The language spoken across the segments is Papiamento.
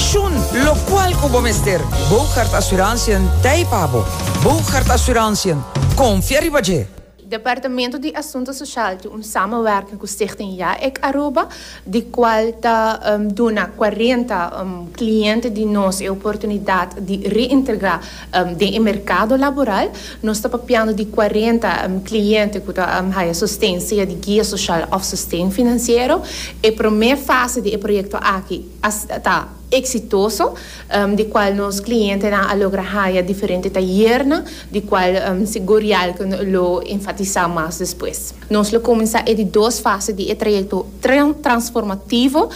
Shun locual cu bo mester. Bougaard Assurantiën t'ei pa bo. Bougaard Assurantiën, confia riba dje! Departamento di Asunto Social tin un samenwerking cu Stichting Ya Ek Aruba, di cual ta duna cuarenta cliente di nos e oportunidad di reintegra den e mercado laboral. Nos ta papiando di cuarenta cliente cu ta haya sosten, sea di guia social of sosten financiero. E prome fase di e proyecto aki, a ta eksitoso, di kual nos klientenan a logra haya diferente tayernan, di kual sigur Yalke lo enfatisá mas despues. Nos lo kuminsá e di dos fase di e trayekto transformativo,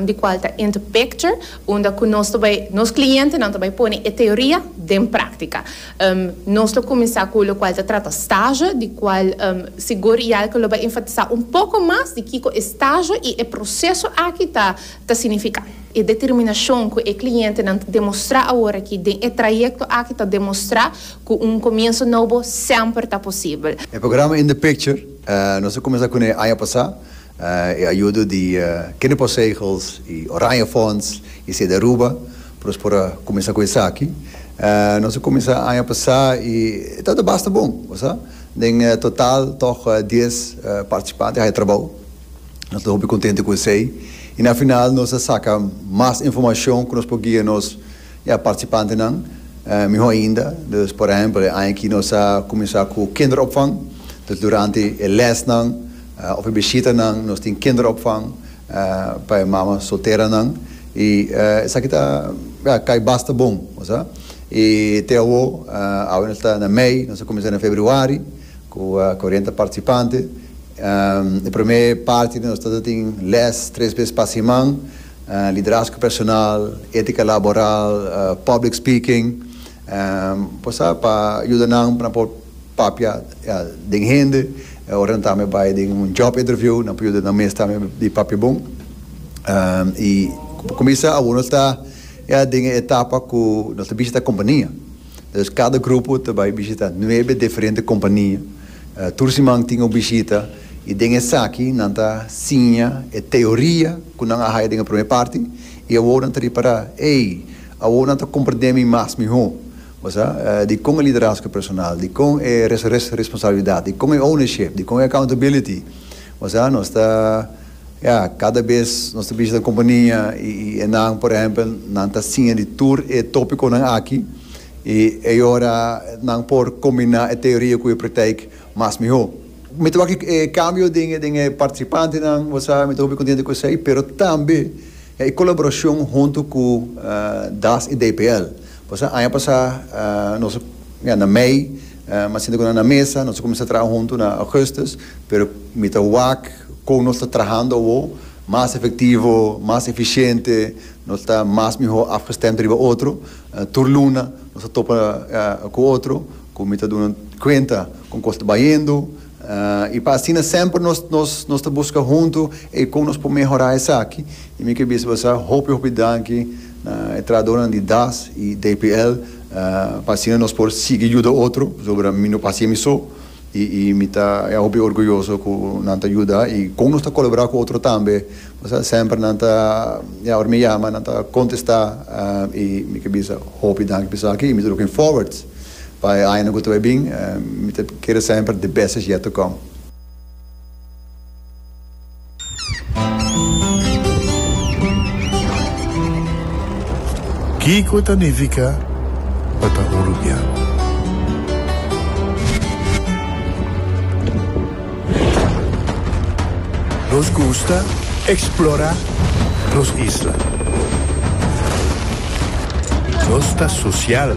di kual ta Interpicture, unda ku nos ta bai nos klientenan ta bai pone e teoria den práktika. Nos lo kuminsá ku lokual ta trata stazio, di kual sigur Yelke lo bai enfatisá un poko mas di kiko e stazio i e proseso aki ta ta signifiká. E determinashon ku e klientenan ta demostrá aworakí den e trayekto aki ta demostrá ku un komienso nobo semper ta posibel. E programa In The Picture nos a kuminsá kuné aña pasá, e ayudo di Kinderpostzegels i Oranjefonds i Sedaruba. Cu nos por a cuminsa cu esaki? Nos a cuminsa aña pasá y e tabata basta bon. Bo sa, den total tog dies participante haya trabou. Nos ta hopi contente cu esey y na final nos a saca mas informacion cu nos por guia nos participantenan miho ainda. Dus, por ehempel, e aña aki nos a cuminsa cu kinderopvang. Dus durante e lesnan of e bishitanan nos tin kinderopvang. pa e mama solteranan y esaki ta cay basta bon bo sa y te awo awe nos ta na mei nos a cuminsa na februari cu cuarenta participante e prome parti nos ta tin les tres bes pa siman liderazgo personal etica laboral public speaking Por sa pa yuda nan pa nan por papia den hende ora nan tambe bai den un job interview nan por yuda nan mes tambe di papia bon y pa cuminsa awo nos ta ya den e etapa cu nos ta bishita compania entonces cada grupo ta bai bishita nuebe diferente compania tur siman tin un bishita y den esaki nan ta siña e teoria cu nan a haya den e prome parti y awo nan ta ripara ey. Awor nan ta comprendé mi mas mihó, bo sa, dikon e liderazgo personal, dikon e responsabilidat, dikon e ownership, dikon e accountability, bo sa. Nos ta, ya, kada bes nos ta bishita un kompania i nan, por ehempel, nan ta siña di tur e tópikonan aki i ei ora nan por kombiná e teoria ku e praktijk mas mihó. Mi ta wak e kambio den e partisipantenan, bo sa, mi ta hopi kontento ku esei, pero tambe E colaboracion hunto cu das y DPL. Pasobra aña pasa nos a na mei mas sinta cu nan na mesa, nos a cuminsa traha hunto na augustus, pero mi ta wak con nos ta trahando awo, mas efectivo, mas eficiente, nos ta mas miho afgestemd riba otro, tur luna nos ta topa cu otro cu mi ta duna cuenta con cosa ta bayendo, I pa asina semper nos ta buska huntu eikon nos por mehorá esaki. I mi ke bisa bo sa hopi hopi danki na e trahadornan di das i DPL pa asina nos por sigui yuda otro pasobra mi no pasa mi so i mi ta ya hopi orguyoso ku nan ta yuda i kon nos ta kolaborá ku otro tambe pasobra semper nan ta ya ora mi yama nan ta kontestá i mi ke bisa hopi danki pa esaki i mi ta looking forward Pa e aña ku ta bai bin, mi ta kere semper the best is yet to come. Kiko ta nifiká pa ta un rubian? Nos gusta eksplorá nos isla. Nos ta sosial.